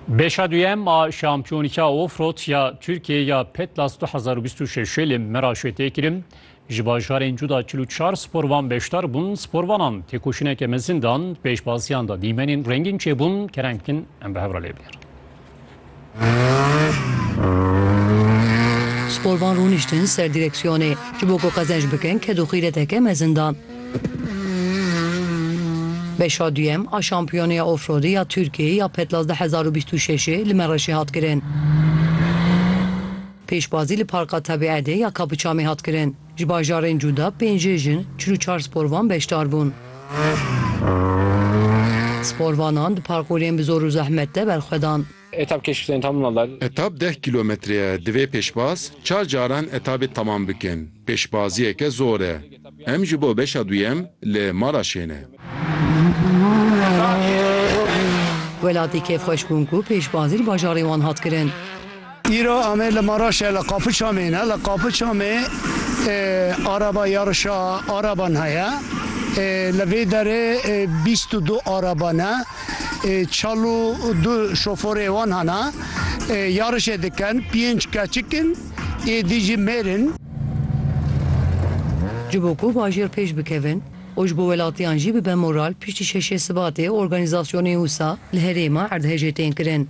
Beşa duyem a Şampiyonîka Offroad ya Tirkiyeyê ya Petlas du hezar û bîst û şeşê li Meraşê tê kirin. Ji bajarên cuda çil û çar sporvan beşdar bûn. Sporvanan têkoşîneke mezin dan. Di pêşbaziyan de dîmenên rengîn çêbûn. Kereng din em bi hev re lê bigerin. Sporvan rûniştin ser dîreksiyonê. Ji bo ku qezenc bikin, kedoxîreteke mezin dan. Beşa duyem a Şampiyoneya Ofrodê ya Tirkiyeyê ya Petlas du hezar û bîst û şeşê li Mereşê hat kirin. Pêşbazî li Parka Tebîedê ya Kapıçamê hat kirin. Ji bajarên cuda pêncê jin, çil û çar sporvan beşdar bûn. Sporvanan di parkurên bi zor û zehmet de berxwedan. Etap keşften tamam oldu. Etap deh kîlometre ye. Divê pêşbaz çar caran etabê temam bikin. Pêşbaziyeke zor e. Em ji bo beşa duyem li Maraşê ne. Welatî kêfxweş bûn ku pêşbazî li bajarê wan hat kirin. Îro em li Maraşê li Qapiçamê ne. Li Qapiçamê araba yarişa araban heye. Li vê derê bîst û du araba ne. Çal û du şoforê wan hene yarişê dikin, pênc keçik in, êdî jî mêr in. Ji bo ku bajêr pêş bikevin û ji bo welatiyan jî bibe moral piştî şeşê Sibatê organîzasyonê usa li herêma erdhejê tên kirin.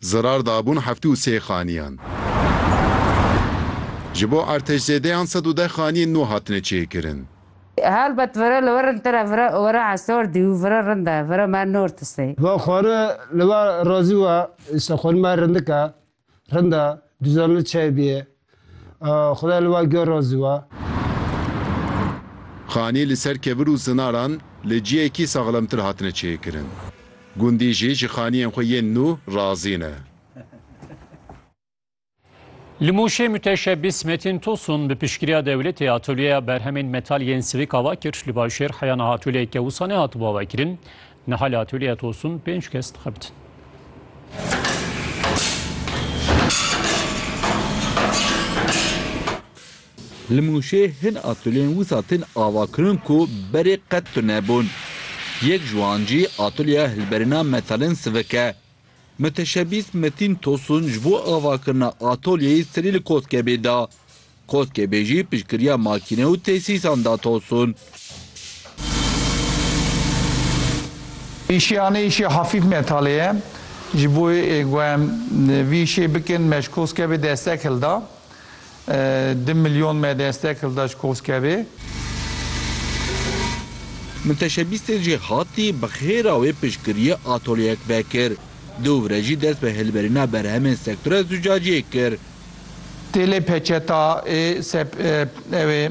Zirar dabûn heftê û sê xaniyan. Ji bo artêşzêdeyan sed û deh xaniyên nû hatine çêkirin. Helbet vere li werin tire vere were esor dî û vere rind e, vere me nortis ê. Va xwari li we razî we. Îsa xwari me rindik e, rind e, duzan li çayê bîyê. Xuda li we gel razî be. Xanî li ser kevir û zinaran li ciyekî saxlemtir hatine çêkirin. Gundî jî ji xaniyên xwe yên nû razî ne. Li Mûşê Muteşebis Metin Tosun bi piştgiriya dewletê atolyeya berhemên metal yên sivik ava kir. Li Başêr heya niha atoleyeke wisa nehatibo avekirin. Niha li atûlîya Tosun pênc kes dixebitin. Li Mûşê hin atûliyên wisa tên avakirin ku berê qet tunebûn. Yek ji wan jî atûliya hilberîna metalên sivik e. Miteşebîs Metîn Tosun ji bo avakirina atûliyeyê serî li koskebê da. Koskê bê jî piştgiriya makîne û tesîsan da Tosun. Îşiyane îşê hafîf metalê ye. Ji bo ku em vî îşê bikin me ji Koskebê destek hilda. Du milyon me destek hilda ji Koskebê. Min teşebîstên jê hatî bi xêra wê piştgiriyê atolyeyek vekir. Dûvre jî dest bi hilberîna berhemên sektora zûcaciyê kir. Têlê peçeta ê sep ew ê.